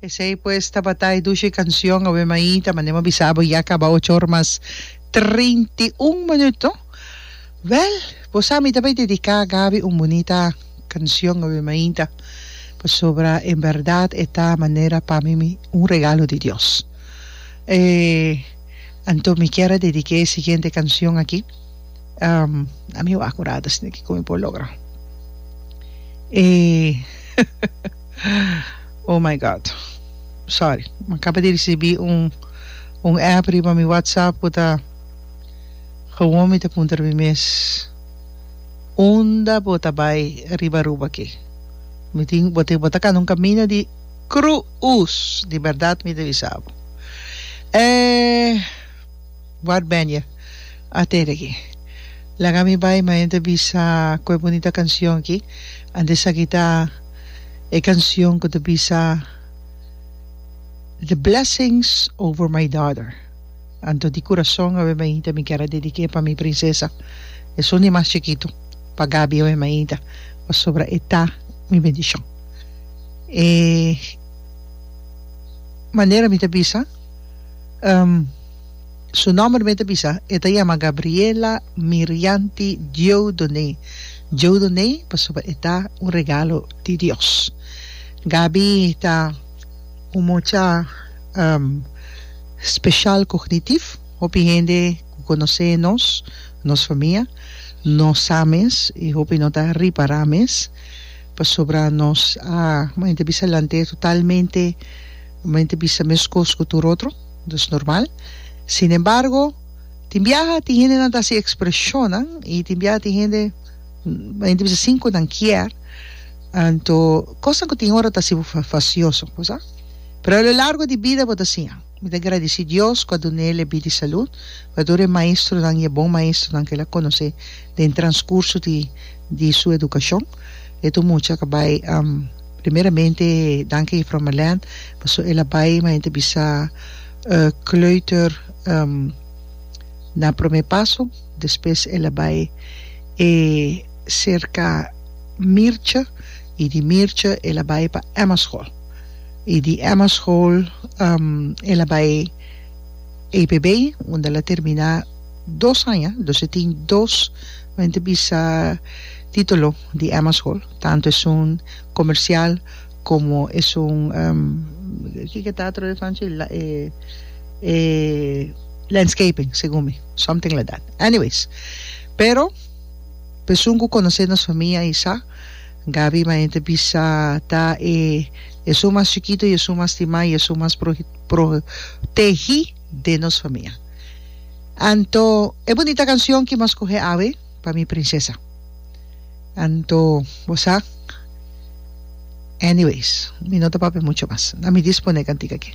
Esei pues tabata e dushi cancion Ave Maita, manera bo bisa abo ya caba ocho or mas treinta i un minuto. Wel, bo sa mi ta bay dedica Gaby un bunita cancion Ave Maita, pasobra en berdad e ta manera pa mi mi un regalo di Dios. E anto mi kier a dedica e siguiente cancion aki. Um, a mi wak ora dus ni kiko mi por logra. E, oh my God, sorry, mi akaba di risibi un, un app riba mi WhatsApp ku ta, gewoon mi ta puntra mi mes, unda bo ta bai riba Aruba aki? Mi tin, bo tin, bo ta kanda un kaminda di Cru uz, di bèrdat mi ta bisa bo. Eh. Ward Benje a tede aki. Laga mi bai ma henter bisa cu e bunita cancion aki. Antes sa kita e cancion cu ta bisa The blessings over my daughter. Anto di curason awe mainta mi kier a dedique pa mi princesa. Esun di mas chikitu pa Gaby awe mainta pasobra e ta mi bendicion. E manera mi ta bisa. Su nòmber mi ta bisa, e ta yama Gabriela Mirianti Dieudonné, Dieudonné pasobra e ta un regalo di Dios. Gabi ta un mocha special cognitif, hopi hende cu conoce nos, nos famia, no sa mes y hopi no ta ripara mes pasobra nos a, como ente bisa, lant'e totalmente, como ente bisa, mescos cu tur otro. Dus normal. Sin embargo, tin biaha tin hendenan ta hasi expresionnan i tin biaha tin hende hende ta bisa sin ku nan kier. Anto kosnan ku tin ora ta hasi bo fasioso, ku sa? Pero a lo largo di bida bo ta siña. Mi ta gradisí Dios ku a dun'é lebí di salud, ku a tur e maestronan i e bon maestronan ku el a konosé den transkurso di di su edukashon. E tur mucha ku a bai. Primeramente danki Juffrouw Merlijn paso el a bai ma hende bisa kleuter na prome paso despues el a bai e serka Mirtje y di Mirtje el a bai pa Emma school y di Emma school el a bai APB unda el a termina dos aña, dus e tin dos hende bisa titulo di Emma school. Tantu esun komersial komo esun kiko ta otro esnan chi e landscaping segun mi something like that anyways pero pesun ku konosé nos famia i sa Gaby mainta bisa ta e esun mas chikitu i esun mas stimá i esun mas protegí den nos famia anto e bunita kansion ki nos skohé awe. Pa mi princesa. Anto bo sa anyways mi no ta papia mucho mas. A mi dispone kantika aki.